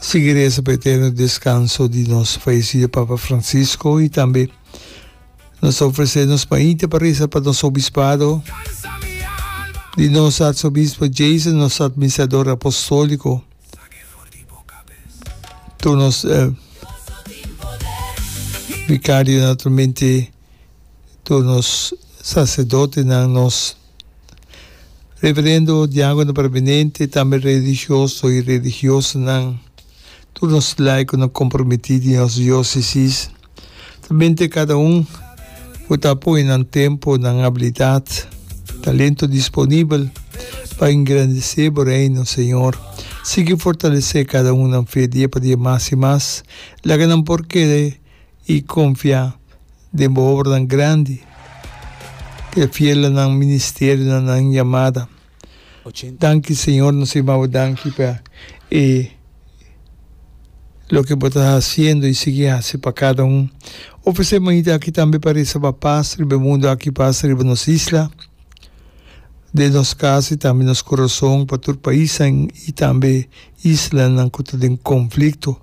Sigui reza pa eterno descanso di nos fallecido Papa Francisco y tambe nos ta ofrece nos maite pa reza pa nos obispado di nos Arzobispo Jason, nos Administrador Apostolico, tur nos Vicario naturalmente. tur nos saserdotenan, nos reverendo, diagono permanente, tambe religioso i religiosanan, tur nos laikonan kompromití di nos diósesis, ta mente kada un ku ta pone nan tempu, nan abilidat, talento disponibel pa engrandesé Bo Reino, Señor. Sigui fortalesé kada un nan fe dia pa dia mas i mas. Laga nan por kere i konfiá den bo obranan grandi ku e fiel na nan ministerio, na nan yamada. Danki Señor, nos a yamabo danki pa e loke bo ta hasiendo i sigui hasi pa kada un. Ofresé mañita aki tambe pa restabá pas riba e mundu aki, pas riba nos isla, den nos kas i tambe nos kurason, pa tur paisnan i tambe. islanan ku ta den konflikto.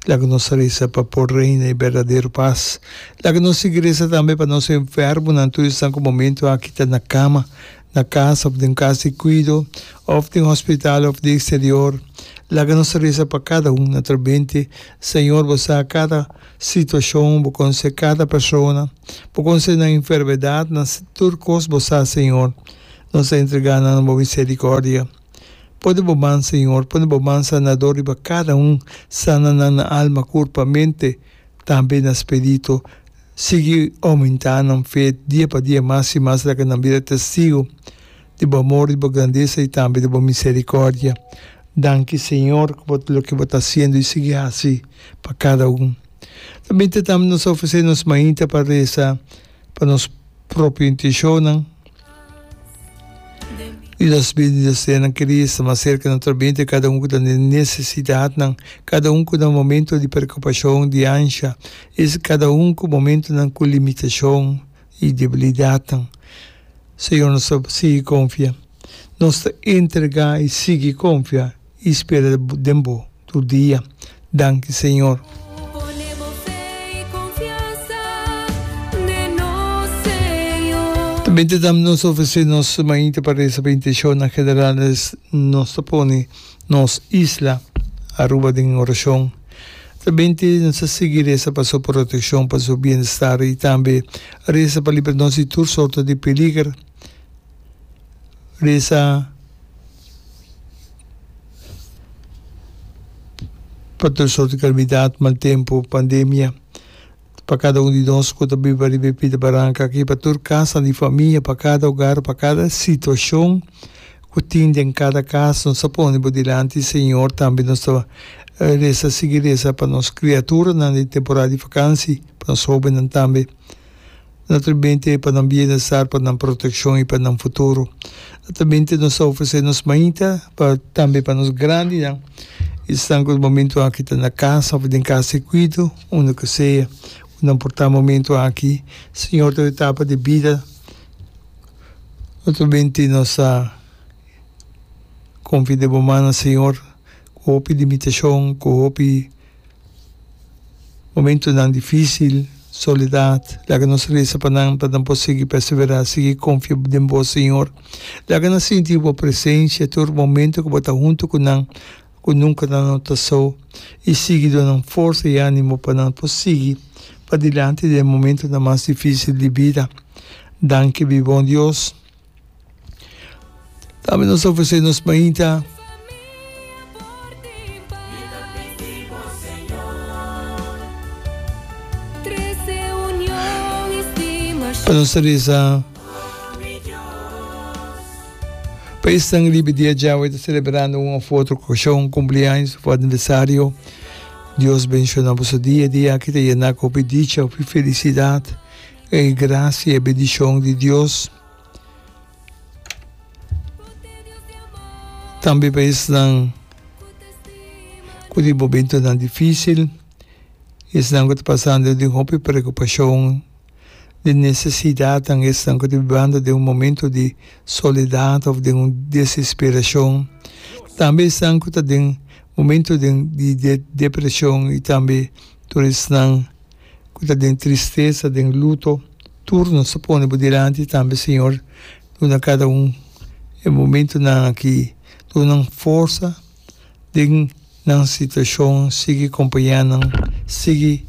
Laga nos a resa pa por reina e berdadero pas. Laga nos sigui resa tambe pa nos enfermonan, tur esnan ku momentu aki ta na kama, na kas òf den kas di kuido, òf den hospital òf di eksterior. Laga nos a resa pa kada un naturalmente. Señor, Bo sa kada situashon, Bo konsé kada persona, Bo konsé nan enfermedat, nan tur kos Bo sa, Señor. Nos a entregá nan na Bo miserikòrdia. Pone bo man, Señor, pone bo man sanador riba cada un, sana nan na alma, curpa, mente, tambe na spirito. Sigui aumenta nan fe dia pa dia mas y mas laga nan bira testigo di bo amor, di bo grandeza y tambe di bo misericordia. Danki, Señor, cu bo ta loke bo ta haciendo y sigui haci pa cada un. Tambe ta tambe nos ofrece nos mainta pa reza pa nos propio intencionnan y nos bendicionnan kere esta mas cerca nuestro mente cada un cu ta den necesidadnan, cada un cu na momento di preocupacion, di ansha, es cada un cu momentonan cu limitacion y debilidadnan. Señor nos ta sigui confia, nos ta entrega y sigui confia I spera den bo tur dia. Danki Señor. Tambe ta dam nos ofresé nos mañita pa resa pa intensho nan generales nos ta pone nos isla Aruba den orashon. Tambe nos ta sigui resa pa su protekshon pa su bienestar i tambe resa pa libra nos di tur sorto di peliger. resa pa tur sort di kalamidat, mal tempu, pandemia, pa kada un di nos ku ta biba riba e pita baranka aki, pa tur kasanan di famia, pa kada ogar, pa kada situashon ku tin den kada kas. Nos ta pone bo dilanti, Señor. Tambe nos ta resa, sigui resa pa nos kriaturanan den temporada di vakansi, pa nos hóbennan tambe. Nan ta binte pa nan bienestar, pa nan protekshon i pa nan futuro. Nan ta binte nos ta ofresé nos mainta, pa tambe pa nos grandinan, esnan ku momentu aki ta na kasa òf den kas di kuido, unda ku sea ku nan por ta momentu aki. Señor tur etapa di bida no ta binte nos ta konfia den bo mannan, Señor, ku hopi limitashon, ku hopi. Momentunan difísil, solidat, laga nos resa pa nan pa nan por sigui perseverá, sigui konfia den Bo, Señor. Laga nan sinti Bo presensia tur momentu ku Bo ta huntu ku nan, ku nunka nan no ta so, i sigui duna nan forsa i ánimo pa nan por sigui padilanti den e momentunan mas difísil di bida. Danki, Bibon Dios. Tambe nos ta ofresé nos mainta. pa nos ta reza pa e sangre libe dia djawe ta celebrando un of otro ocasión cumpleaños of aniversario Dios bendiciona boso dia di aki ta yena cu hopi dicha hopi felicidad E gracia e bendicion di Dios tambe pa esnan cu di momentonan dificil, esnan cu ta pasando den hopi preocupacion, den necesidadnan, esnan cu ta bibando den un momento di soledad of den un desesperacion, tambe esnan cu ta den momento den di depresion y tambe tur esnan. ku ta den tristesa, den luto, tur nos ta pone bo dilanti tambe, Señor. Duna kada un e momentunan aki. Duna nan forsa den nan situashon. Sigui kompañá nan. Sigui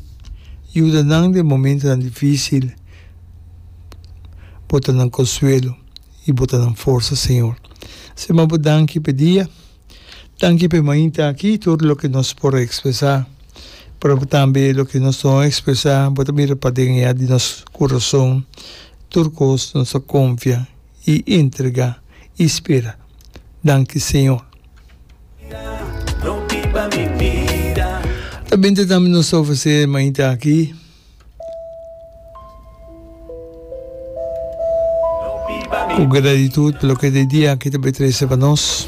yuda nan den momentunan difísil. Bo ta nan konsuelo i bo ta nan forsa, Señor. Sin mas bo danki pa e dia. Danki pe mainta aki tur loke nos por ekspresá, pero tambe loke nos no ekspresá bo ta bira paden ya di nos kurason tur kos nos a konfia i entregá i spera. Danki Señor. Ta binte tambe nos ta ofresé e mainta aki. Ku gratitut pa loke e dia aki ta bai trese pa nos.